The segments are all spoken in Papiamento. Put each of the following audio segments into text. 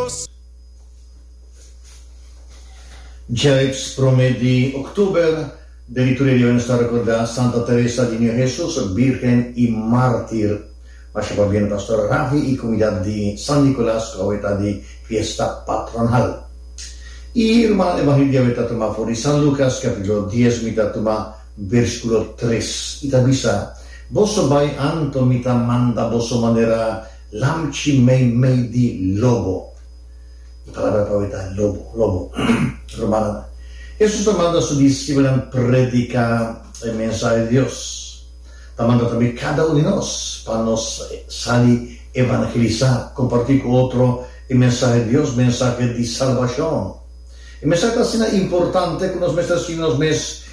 Dios. Djelips prome di Oktober, Diriktoria di Ons ta rekordá Santa Teresa di Niño Hesus, Bírgen i Mártir. Masha pa bini Pastor Rafi i komunidat di San Nikolas ku awe ta di fiesta patronal. E ruman evangelio di awe ta tuma for di San Lukas kapítulo dies, mi ta tuma bèrsikulo tres. I ta bisa, Boso bai anto, mi ta manda boso manera Lamchi mei mei di lobo. E palabra pa hoy ta lobo, lobo. Rumannan, Hesus ta manda su disipelnan prediká e mensahe di Dios. Ta manda tambe kada un di nos pa nos sali evangelisá, kompartí ku otro e mensahe di Dios, mensahe di salbashon. E mensahe ta asina importante ku nos mester sinti nos mes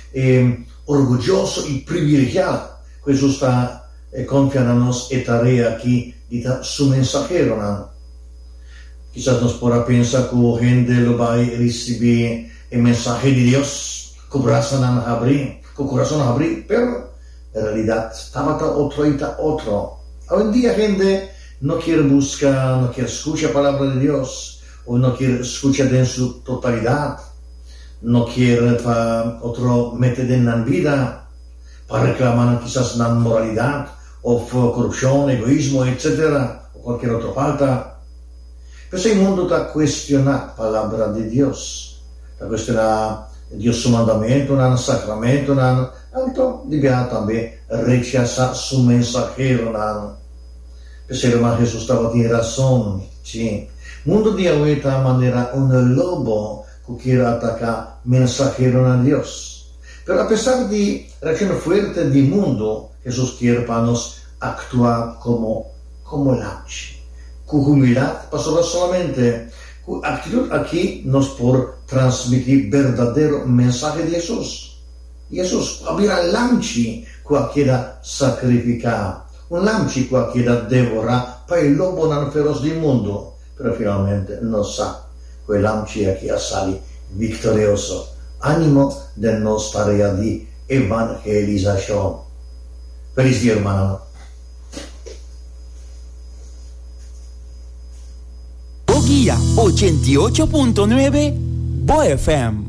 orguyoso i privilegiá ku Hesus ta E konfia na nos e tarea aki di ta Su mensaheronan. Kisas nos por a pensa ku hende lo bai risibí e mensahe di Dios ku brasanan habrí, ku kurason habrí. Pero, e realidat tabata otro i ta otro. Awendia hende no kier buska, no kier skucha Palabra di Dios, òf no kier skucha den su totalidat. No kier pa otro mete den nan bida. pa reklama nan kisas na moralidat of korupshon, egoismo, etc. O kualkier otro falta. Pe esei mundo ta kuestioná Palabra di Dios, ta kuestioná Dios Su mandamentunan, sakramentunan, anto dibiá tambe rechasá Su mensaheronan. Pe esei loman Hesus tabatin rason. Sí, mundo di awe ta manera un lobo ku kier ataká mensaheronan Dios. Pero apesar di Raquel fuerte di mundo, Hesus kier pa nos aktua komo komo lamchi, ku humildat, pasobra solamente ku aktitut aki nos por transmití berdadero mensahe di Hesus. Hesus a bira lamchi ku a keda sakrifiká, un lamchi ku a keda devorá pa e lobonan feros di mundo. Pero finalmente nos sa cu e lamchi aki a sali victorioso. Animo den nos tarea di evangelisacion. Feliz Dia Hermananan. Bo guia ochenta i ocho punto nuebe, bo FM.